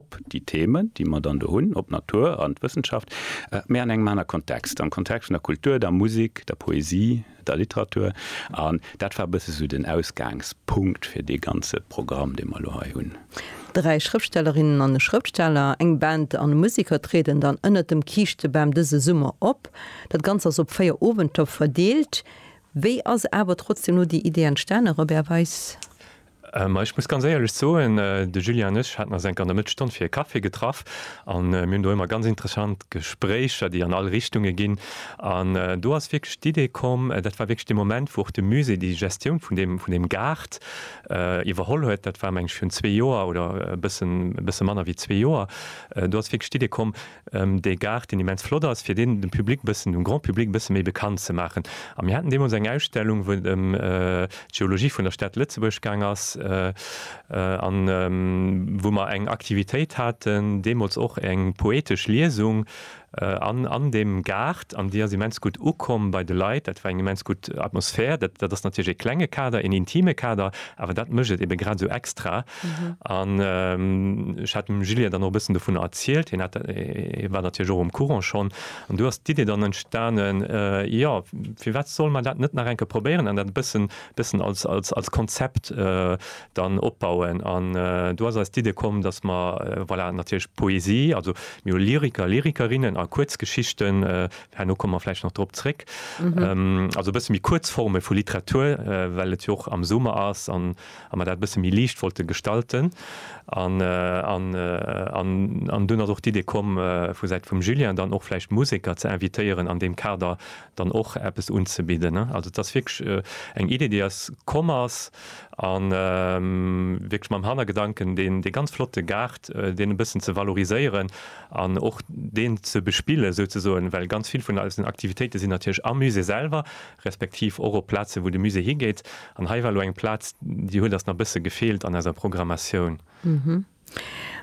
op déi Themen, déi mer dann do hunn, op d'Natur an d'Wëssenschaft, mä an engem aner Kontext, am Kontext vun der Kultur, der Musek, der Poesie, der Literatur. An dat war e bësse sou den Ausgaangspunkt fir dee ganze Programm, dee mer elo hei hunn. Dräi Schrëftstellerinnen an e Schrëftsteller, eng Band an e Museker trieden dann ënnert dem Kiischtebam dëse Summer op. Dat Ganzt ass op véier Owenter verdeelt. Wéi ass awer trotzdeem elo déi Idee entstanen, Robert Weis? Ma ech muss ganz éierlech soen, de Julien an ech haten eis enk an der Mëttesstonn fir e Café getraff a mir hunn do ëmmer ganz interessant Gespréicher, déi an all Richtunge ginn. An do ass wierklech d'Idee komm, dat war wierklech dee Moment, wou och de Musée déi Gestioun vun deem, vun deem Gaart iwwerholl huet, dat war meng ech virun zwee Joer oder e bësse manner wéi zwee Joer. Do ass wierklech d'Idee komm, dee Gaart, deen immens flott ass, fir deen dem Public e bëssen, dem Grand Public e bësse méi bekannt ze maachen. A mir haten deemools eng Ausstellung, wou et ëm d'Geologie vun der Stad Lëtzebuerg gaang ass a wou mer eng Aktivitéit haten, deemools och eng poetesch Liesung an deem Gaart. An déi ass immens gutt ukomm bei de Leit. Dat war eng immens gutt Atmosphär. Dat ass natierlech e klenge Kader, een intime Kader, awer dat mécht et ebe grad esou extra. An ech hat dem Julien dann och e bëssen dovun erzielt, hien hat, hie war natierlech och am Courant schonn. An do ass d'Idee dann entstanen, jo, firwat solle mer dat net nach eng Kéier probéieren an dat e bëssen, bëssen als, als, als Konzept dann opbauen. An do ass eis d'Idee komm, dass mer, voilà, natierlech Poesie, also mir hu Lyriker, Lyrikerinnen a Kuerzgeschichten, herno komme mer vläicht nach drop zréck, also e bësse méi kuerz Forme vu Literatur, well et jo och am Summer ass an, a mer dat e bësse méi liicht wollte gestalten an an an an dunn ass och d'Idee komm vu Säit vum Julien dann och vläicht Museker ze invitéieren an deem Kader dann och eppes unzebidden. Also et ass wierklech eng Idee déi eis komm ass a wierklech mam Hannergedanken deen dee ganz flotte Gaart deen e bëssen ze valoriséieren an och deen ze bespille souzesoen, well ganz vill vun eisen Aktivitéite sinn natierlech am Musée selwer respektiv och op Plaze wou de Musée higeet, an hei war elo eng Plaz, déi huet ass nach e bësse gefeelt an eiser Programmatioun. Hm,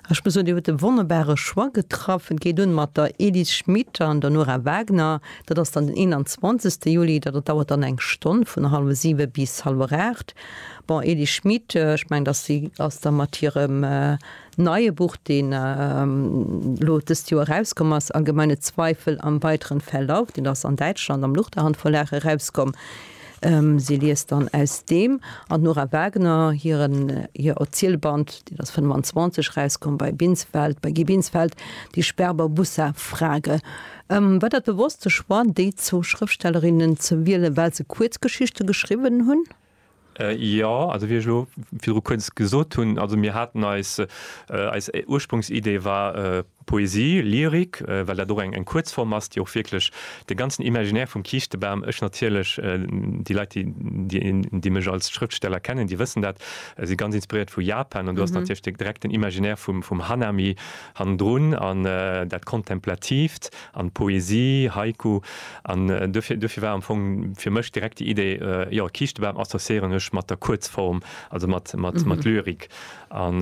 ech muss soen, Dir hutt e wonnerbare Choix getraff. Et geet un mat der Edith Schmit an der Nora Wagner. Dat ass dann den 21. Juli, dat dauert dann eng Stonn, vun hallwe siwe bis hallwer aacht. Bon, Edith Schmit, ech mengen, datt si ass da mat hirem Neie Buch, deen elo dëst Joer erauskomm ass, Allgemeine Zweifel am weiteren Verlauf, deen ass an Däitschland am Luchterhand Verlag erauskomm. Si liest dann aus deem an Nora Wagner hiren hir Erzielband, deen ass 25 erauskomm bei Binsfeld, bei Guy Binsfeld, Die Sperber-Bussa-Frage. War dat bewosst de Choix, déi zwou Schrëftstellerinnen ze wielen, well se Kuerzgeschichte geschriwwen hunn? Jo, also wéi ech elo virdru kuerz gesot hunn, also mir haten eis, eis Ursprungsidee war Poesie, Lyrik, well dat och eng Kuerzform ass, déi och wierklech de ganzen Imaginär vum Kiischtebam, ech natierlech, déi Leit, déi, déi mech als Schrëftsteller kennen, déi wëssen dat, si ganz inspiréiert vu Japan an do ass natierlech direkt den Imaginär vum Hanami hannendrun an dat Kontemplatiivt, an Poesie, Haiku, an duerfir duerfir war am Fong fir mech direkt déi Idee, jo, Kiischtebam associéieren ech mat der Kuerzform, also mat mat mat Lyrik, an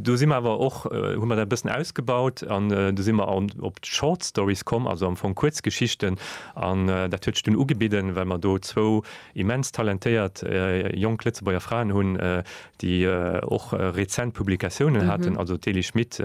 do si mer awer och hu mer dat e bëssen ausgebaut, an do si mer an op d'Short Stories komm, also am Fong Kuerzgeschichten, an dat huet sech dunn ugebidden, well mer do zwou immens talentéiert jonk Lëtzebuerger Fraen hunn, déi och rezent Publikatiounen haten, also d'Elie Schmit,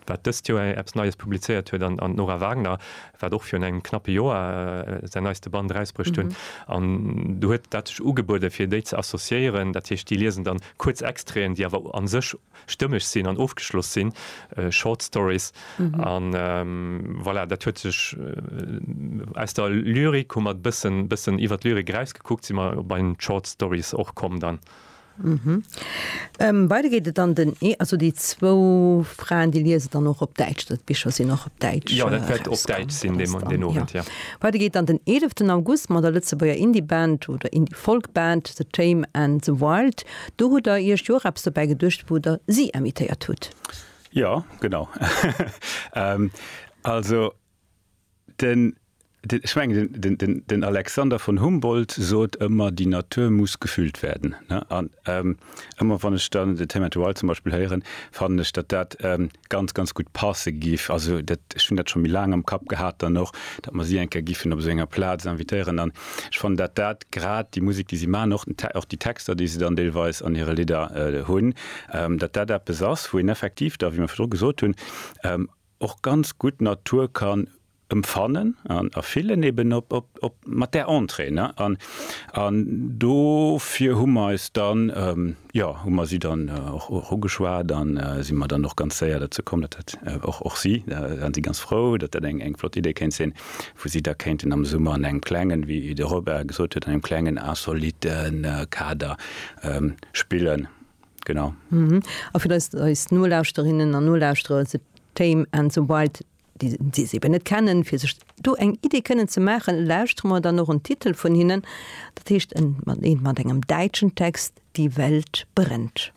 wat dëst Joer eppes Neies publizéiert huet, an d'Nora Wagner, wat och virun engem knappe Joer säin neiste Band erausbruecht hunn. An do huet dat sech ugebueden, fir déi ze associéieren. Dat heescht, déi liesen dann kuerz Extraiten, déi awer a sech stëmmeg sinn an ofgeschloss sinn, Short Stories. An voilà, dat huet sech aus der Lyrik, hu mer e bëssen iwwer d'Lyrik erausgekuckt, si mer bei den Short Stories och komm dann. Beide geet et an den Ee, also déi zwou Fraen, déi liese dann och op Däitsch, also d'Bicher sinn och op Däitsch erausgaangen. Jo, dat wäert op Däitsch sinn deen Owend, jo. Beide geet an den eeleften August mat der Lëtzebuerger Indie-Band oder Indie-Folk-Band The Tame and the Wild. Do hutt Der Iech jo och eppes dobäi geduecht, wou Der si invitéiert hutt. Jo, genau. Also Den, den, ech mengen, den, den, den, den Alexander von Humboldt sot ëmmer, Die Natur muss gefühlt werden. Ne? An ähm, ëmmer wann ech dann de Thema Dual zum Beispiel héieren, fannen ech, datt dat ähm, ganz, ganz gutt passe giff. Also dat, ech hunn dat scho méi laang am Kapp gehat dann och, datt mer si eng Kéier giffen op esou enger Plaz invitéieren. An ech fannen, datt dat grad déi Musek, déi si maachen, och den, och déi Texter, déi se dann deelweis an hire Lidder äh, hunn, ähm, datt dat eppes ass, wou een effektiv da, wéi mer virdru gesot hunn, ähm, och ganz gutt d'Natur kann emfannen an erfillen eben op op mat där Entrée ne an an dofir hu mer eis dann jo hu mer si dann och och ugeschwat an si mer dann och ganz séier derzou komm datt dat och och si da waren si ganz frou datt dat eng eng flott Idee kéint sinn wou si da kéinten am Summer an engem klengen wéi de Robert gesot huet an engem klengen insoliten Kader spillen. Genau. A fir eis, eis Nolauschterinnen an Nolauschterer, The Tame and the Wild, déi, déi se eben net kennen, fir sech do eng Idee kënnen ze maachen, lauschtere mer dann och en Titel vun hinnen. Dat heescht, en, mat, een mat engem däitschen Text, Die Welt brennt.